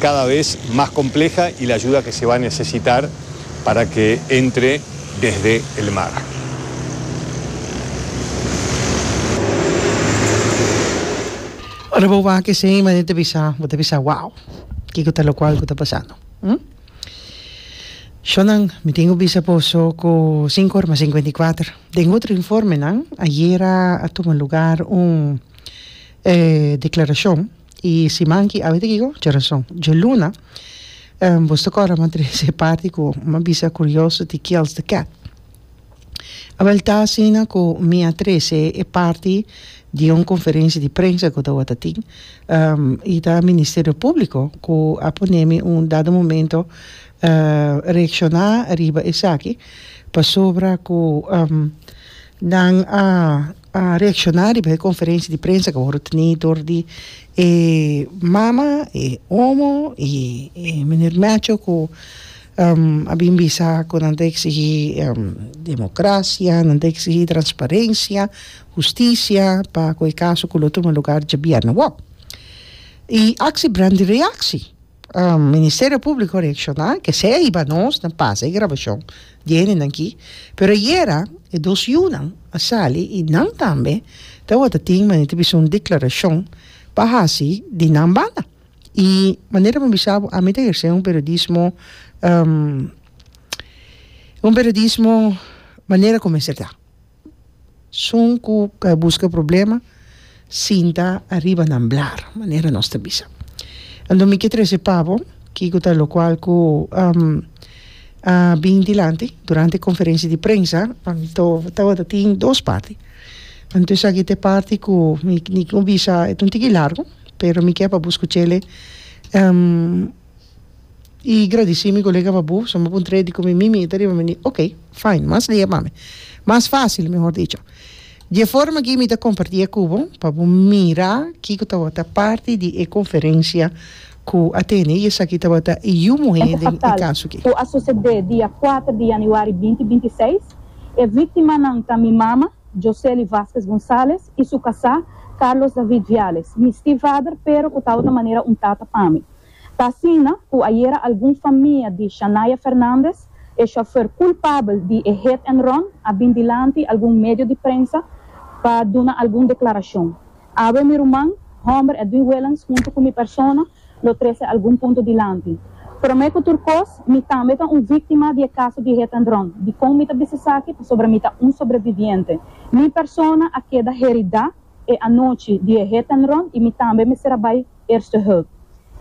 cada vez mas compleja y la ayuda que se va necesitar para que entre desde el mar. Ora bo wak esey manera ta bisa bo ta bisa wow kico ta locual cu ta pasando hm Shonnan mi tin cu bisa boso cu cinco ora mas cincuenta y cuater den otro informenan ayera a tuma lugar un eh declaracion. E siman ki a wete kiko? Djerason. Djeluna, bos ta kòrda m'a trese e parti ku m'a bisa kurioso di Kills the Cat? Awèl ta asina ku mi a trese e parti di un konferensia di prensa ku tawata tin i ta Ministerio Públiko ku a pone mi un dado momento reakshoná riba esaki pasobra ku Nan a a reacciona riba e conferencia di prensa cu a wor teni dor di e mama, e omo y e meneer Meacho cu a bin bisa cu nan ta exigi democracia, nan ta exigi transparencia, justicia pa cu e caso cu lo tuma lugar dje biernawoo. Y actie brandi reactie. Ministerio Públiko reakshoná, kesei a hiba nos, nan pasa e grabashon di hendenan aki, pero ayera e dos yunan a sali i nan tambe tabata tin manera ta bisa un deklarashon pa hasi di nan banda i manera mi a bisa bo ami ta hersé un periodismo un periodismo manera ku mester ta. Sun ku e buska problema, sinta ariba nan blar, manera nos ta bisa. Anto mi ke trese pa bo kiko ta lokual ku a bin dilanti durante e konferensia di prensa, anto tabata tin dos parti. Anto esaki ta e parti ku mi tin ku bisa, e ta un tiki largu, pero mi ke pa bo skuch'e I gradisí mi kolega pa bo, suma pa un trei di komi mi mita riba mi ni. Oke, fine, mas lea pa mi. Mas fásil, mehor dicho. Dje forma akí mi ta kompartí akí ku bo pa bo mira kiko tabata parti di e konferensia ku a tene i esaki tabata e yu muhé den e kaso akí. Ku a susedé dia kuater di yanüari binti binti seis, e víktimanan ta mi mama, Josely Vásquez González, i su kasá, Carlos David Viales, mi stiefvader pero ku tabata manera un tata pa mi. Ta asina ku ayera algun famia di Shania Fernandez, e shofèr kulpabel di e hit and run, a bin dilanti algun medio di prensa pa duna algun deklarashon. Awe mi ruman, hòmber Edwin Willens huntu ku mi persona lo trese algun punto dilanti. Promé ku tur kos, mi tambe ta un víktima di e kaso di hit and run. Dikon mi ta bisa esaki? Pasobra mi ta un sobreviviente. Mi persona a keda heridá e anochi di e hit and run i mi tambe mester a bai. Eerste Hulp.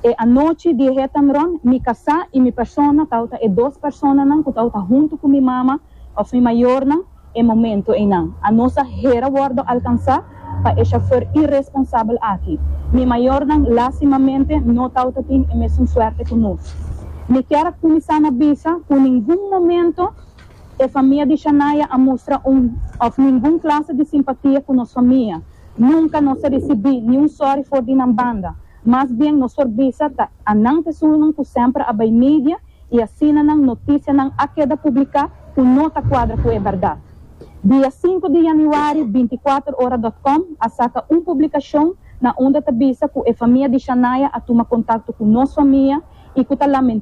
E anochi di e hetanron mi kasá i mi persona tawata e dos personanan ku tawata huntu ku mi mama òf mi mayornan e momento einan. Anos a hera wòrdu alkansá pa e shofèr iresponsabel aki. Mi mayornan lástimamente no tawata tin e mesun suerte ku nos. Mi kier a kuminsá na bisa ku ningun momento e famia di Shania a mustra un òf ningun klase di simpatia ku nos famia. Nunka nos a risibí niun sòri for di nan banda. Mas bien nos por bisa ta a nan pesunnan ku semper a bai media i asina nan notisianan a keda publiká ku no ta kuadra ku e bèrdat. Dia sinku di yanüari bintiakuaterora dòt kòm a saka un publikashon na unda ta bisa ku e famia di Shania a tuma kontakto ku nos famia i ku ta lamentá